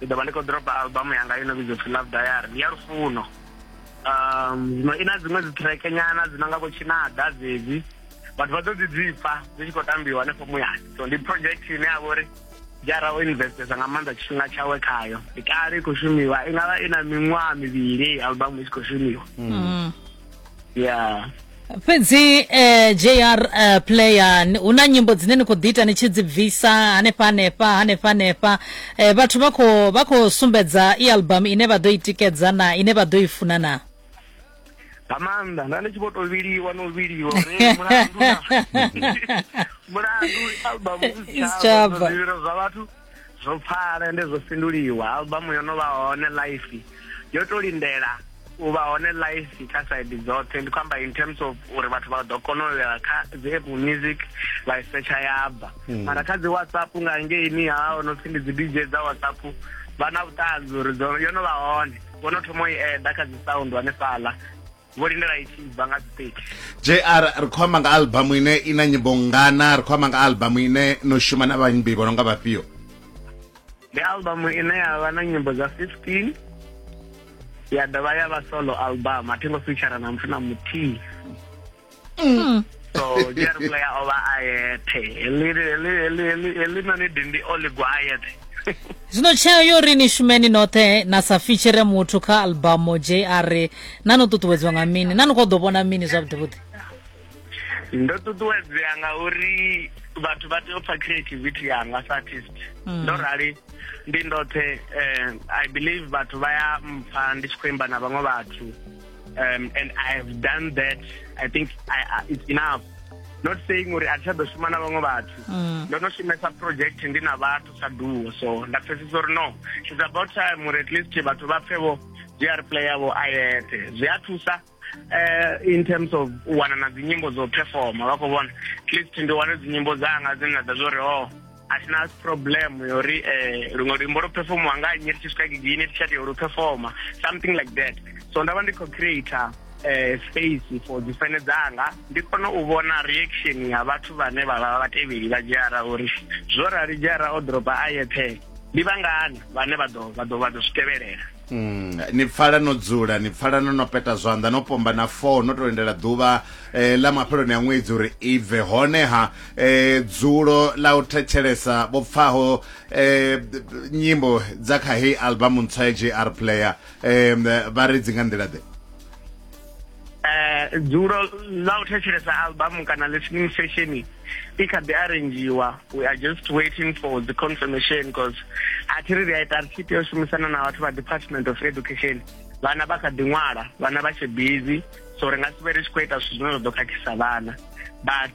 ndi ḓo vha ndi khou dropa album yanga ino vhidzwa pfhi love diary ndi ya lufuno um zwino i na dziṅwe dzi track nyana dzi no nga vho tshinada dzedzi vhathu vha ḓo dzi dzipfa dzi tshi khou tambiwa hanefho muyani so ndi project ine ya vha uri jara o investesa nga maanḓa tshifhinga tshawe khayo ndi kale i khou shumiwa i nga vha i na miṅwaha mivhili album i tshi khou shumiwa mm. ya fhedzi eh, jr eh, player ni- hu na nyimbo dzine ni khou ḓi ita ni tshi dzi bvisa hanefha hanefha hanefha hanefha eh, vhathu vha khou vha khou sumbedza i album ine vha ḓo i tikedza na ine vha ḓo i funa na nga maanḓa nda ndi tshi vho to vhiliwa no vhiliwa uri mulandu na- mulandu album Isitshaba. zwivhilo zwa vhathu zwo pfala ende zwo fhinduliwa albamu yo no vha hone life yo to lindela u vha hone life kha side dzoṱhe ndi khou amba in terms of uri vhathu vha ḓo kona u ya kha dzi apple music vha isetsha ya bva hmm. mara kha dzi whatsapp nga ngeini ha o no pfhi ndi dzi dj dza whatsapp vha na vhuṱanzi uri yo no vha hone vho no thoma u i eda kha dzi sound hanefhaḽa vho lindela i tshi bva nga dzi 30 jr ri khou amba nga albamu ine i na nyimbo ngana ri khou amba nga albamu ine no shuma na vhaimbi vho no nga vhafhio ndi albamu ine ya vha na nyimbo dza 15 ya dovha ya vha solo album a thi ngo feature na muthu na muthihi mm. so jerry player o vha a yeṱhe heḽi na ni dindi o ligwa a yeṱhe zwino tsheo yo ri ni shumeni noṱhe na sa fitshire muthu kha albumu jr na no ṱuṱuwedziwa nga mini na ni khou ḓo vhona mini zwavhuḓivhuḓi ndo ṱuṱuwedzea nga uri vhathu vha tea u pfa creativity yanga sa artist mm. ndo rali ndi ndoṱhe um i believe vhathu vha ya mpfa ndi tshi khou imba na vhaṅwe vhathu um, and i have done that i think I, I, it's enough not saying uri a thi ḓo shuma na vhaṅwe vhathu mm. ndo no shumesa project ndi na vhathu sa duo so nda pfesesa uri no it's about time uri at least vhathu vha pfe vho zwi a replaya vho a yeṱhe zwi a thusa eh, in terms of u wana na dzinyimbo dzo performa vha khou vhona at least ndi wane dzinyimbo dzanga dzine na ḓa zwo ri o oh, a thi na problem yo ri um luṅwe luimbo lwo performiwa nga nnyi ri tshi swika gigi ine tshati yo lu performa something like that so nda vha ndi khou creator um space for dzi fene dzanga ndi kone u vhona reaction ya vhathu vhane vha vha vhatevheli vha dzhiara uri zwo rali dzhiara o dropa a yeṱhe ndi vhangani vhane vha ḓo vha ḓo vha ḓo zwi tevhelela Mm, ni pfala no dzula ni pfala no no peta zwanḓa no pomba na four no to lindela ḓuvha eh, ḽa mafheloni a ṅwedzi uri i bve honeha eh, dzulo ḽa u thetshelesa vho pfaho eh, nyimbo dza kha heyi album ntswa ya jr player eh, vha ri dzi nga nḓila ḓe eh dzuro ḽa u thetshelesa album kana listening session i kha ḓi arrangiwa we are just waiting for the confirmation because a thi ri ri a ita ri tshi tea u shumisana na vhathu vha department of education vhana vha kha ḓi ṅwala vhana vha tshe busy so ri nga si vhe ri tshi khou ita zwithu zwine zwa ḓo khakhisa vhana but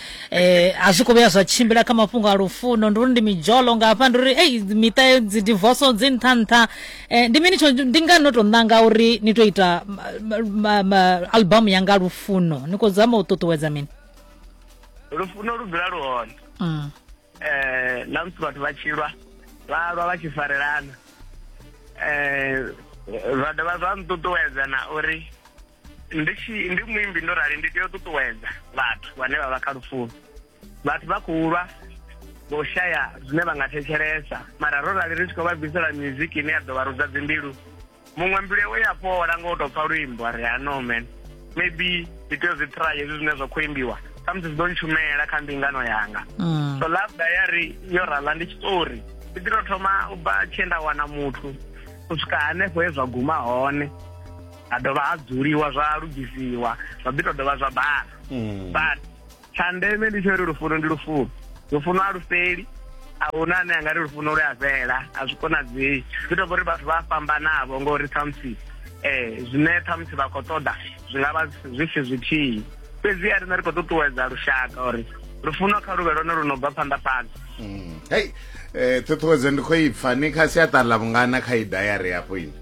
eh, a zwi khou vhuya zwa tshimbila kha mafhungo a lufuno ndi uri ndi midzholo nga hafha ndi uri ei miṱa yo dzi divorce dzi nṱha nṱha eh, ndi mini tsho ndi ngani no tou ṋanga uri ni tou ita ma- ma- ma- album ya nga lufuno ni khou zama u ṱuṱuwedza mini lufuno lu dzula lu hone mm. eh na musi vhathu vha tshilwa vha lwa vha tshi farelana eh zwa dovha zwa nṱuṱuwedza na uri ndi tshi ndi muimbi ndo rali ndi tea u ṱuṱuwedza vhathu vhane vha vha kha lufuno vhathu vha khou lwa vho shaya zwine vha nga thetshelesa mara ro rali ri tshi khou vha bvisela miziki ine ya ḓo vha rudza dzimbilu muṅwe mbilu yawe ya fhola nga u tou pfa luimbo a ri ha no man maybe ndi tea u zwi try hezwi zwine zwa khou imbiwa samusi zwi ḓo ntshumela kha mbingano yanga mm. so love diary yo rala ndi tshiṱori ndi ḓi tou thoma u bva tshee nda wana muthu u swika hanefho he zwa guma hone ha dovha ha dzuliwa zwa lugisiwa zwa ḓi to dovha zwa bala mm. but tsha ndeme ndi tsho uri lufuno ndi lufuno lufuno a lu fheli a huna ane a nga ri lufuno lu a fhela a zwi konadzei zwi to uri vhathu vha fhambanavho ngori ṱhamusi um zwine ṱhamusi vha khou ṱoḓa zwi nga vha zwi si zwithihi fhedzi a rine ri khou ṱuṱuwedza lushaka uri lufuno kha luvhe lwone lu no bva phanḓa phanḓa mm. hei um ṱhuṱhuwedzo ndi khou ipfa ni kha siaṱari ḽa vhungana kha i dayari hafho ini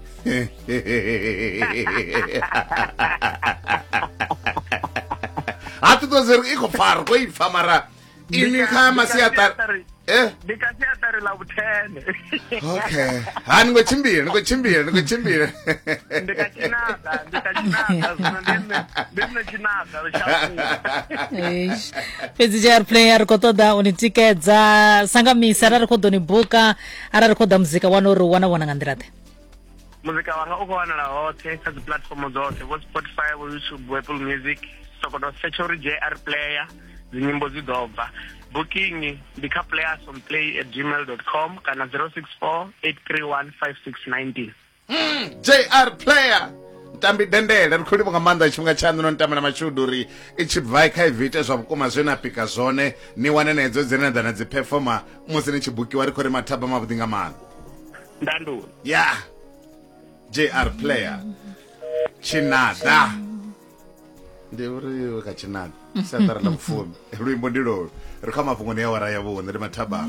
ha ti to zeri i khou fara ko i pfa mara ini kha masiaṱari eh? ndi kha siaṱari ḽa vhuthene okay ha ni ngo tshimbila ni ngo tshimbila ni ngo tshimbila ndi kha tshinaḓa ndi kha tshinaḓa zwino ndi nne ndi nne tshinaḓa fhedzi jr play a ri khou ṱoḓa u ni tikedza sangamisa arali ri khou ḓo ni buka arali ri khou ḓa muzika wana uri u wana vhona nga nḓila ḓe muzika wanga u khou wanala hoṱhe kha dzi puḽatifomo dzoṱhe vho spotify vho youtube vho apple music sokoto search uri jr player dzinyimbo dzi ḓo bva booking ndi kha playerson play at gmail com kana 064 831 5619 mm, jr player tambi dendele ri khou livha nga maanḓa tshifhinga tshaṋu no nitamela mashudu uri i tshi bvai kha ivi ite zwa vhukuma zwe na pika zwone ni wane na hedzo dzine na ḓa na dzi performa musi ni tshi bukiwa ri khou ri mathaba mavhuḓi nga maanḓa ndandule ya jr player tshinada ndi uri ka tshinada siaṱari ḽa vhufumi luimbo ndi lolo ri kha mafhungoni ya wara ya vhuṋe ndi mathabama